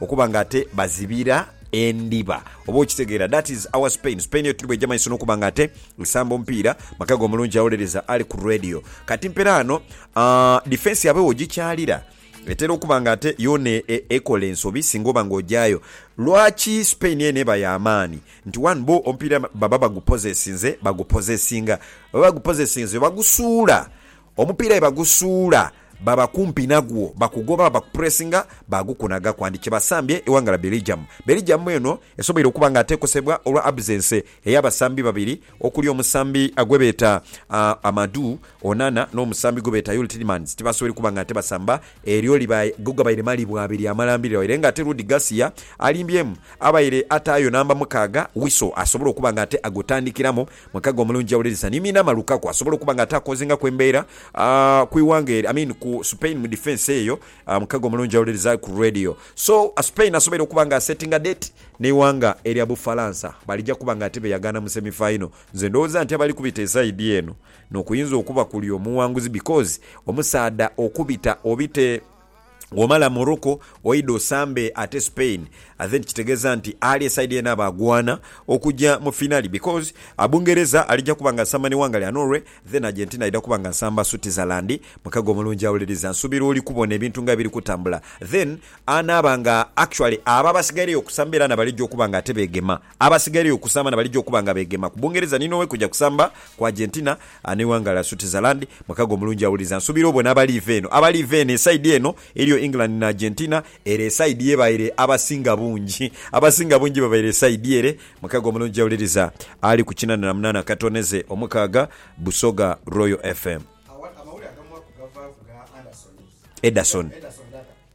Okuba nga ate bazibira endhiba. Oba okitegeera? That is our Spain. Spain yo tuli bweija maiso n'okuba nga ate esamba omupiira. Makago omulungi awolereza ali ku Radio. Kati mpera ano, aah, defence yaabwe wogikyalira, etera okuba nga ate yoona e, e, ekola ensobi singa oba nga ogyayo. Lwaki Spain eno eba ya maani? Nti one, bo omupiira baba bagupozesinze, bagupozesinga. Baba bagupozesinze, bagusuula. Omupiira bwe bagusuula baba kumpi nagwo bakugoba baba kupuresinga baagukunaga kwandi kye basambye ighanga lya Belgium. Belgium eno esoboire okuba nga atekosebwa olwa absence ey'abasambi babiri okuli omusambi gwebeeta Amadou Onana n'omusambi gwebeeta Yuri Tielemans tibasoboire kuba nga ate basamba eryo liba ghegabaire malibwa abiri amalambirira waire nga ate Rudi Garcia alimbyemu abaire ataayo namba mukaaga Wissel asobole okuba nga ate agutandikiramu Mwekaghe omulungi awuliriza ni miina ama Lukaku asobola okuba nga ataakozingaku embeera ku ighanga eryo, I mean ku Spain mu defence eyo, mwekaghe omulungi awuliriza ku radio. So Spain asoboire okuba nga asettinga date neighanga erya Bufalansa balija kuba nga ate beyagaana mu semi final. Nze ndowooza nti abali kubita eside eno nokuyinza okuba kuli omuwanguzi because omusaadha okubita obite. Womala Morocco oidha osambe ate Spain and then kitegeza nti ali eside yena aba agwana okuja mu finali because Bungereza alija kuba nga asamba ni wanga lya Norway then Argentina aidha kuba nga asamba Switzerland mukago omulungi awuliriza nsubira oli kubona ebintu nga ebiri kutambula then anaba nga actually abo abasigaireyo okusamba era nabalija okuba nga ate begema Abasigairegho okusamba na baligya okuba nga beegema ku Bungereza ni Norway kugya kusamba ku Argentina n'eighanga lya Switzerland. Mweka gwe omulungi awuliriza, nsuubira obone abaliiva eno. Abaliiva eno, esaidi eno eriyo England ni Argentina. Ere esaidi y'ebaire abasinga bungi. Abasinga bungi babaire esaidi ere. Mweka gwe omulungi awuliriza ali ku kinana na munana akatoneze omukaaga, Busoga Royal FM. Ederson.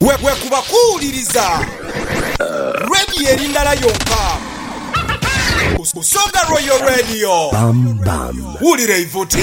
Bwekuba kuwuliriza Radio eri ndala yonka, Busoga Royal Radio. Wulira eivuti.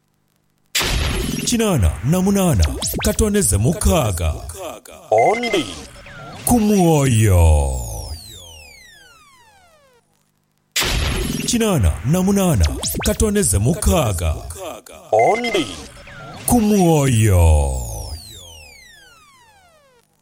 Kinaana na munaana katoonheze mukaaga, ondi ku mwoyo. Kinaana na munaana katoonheze mukaaga, ondi ku mwoyo.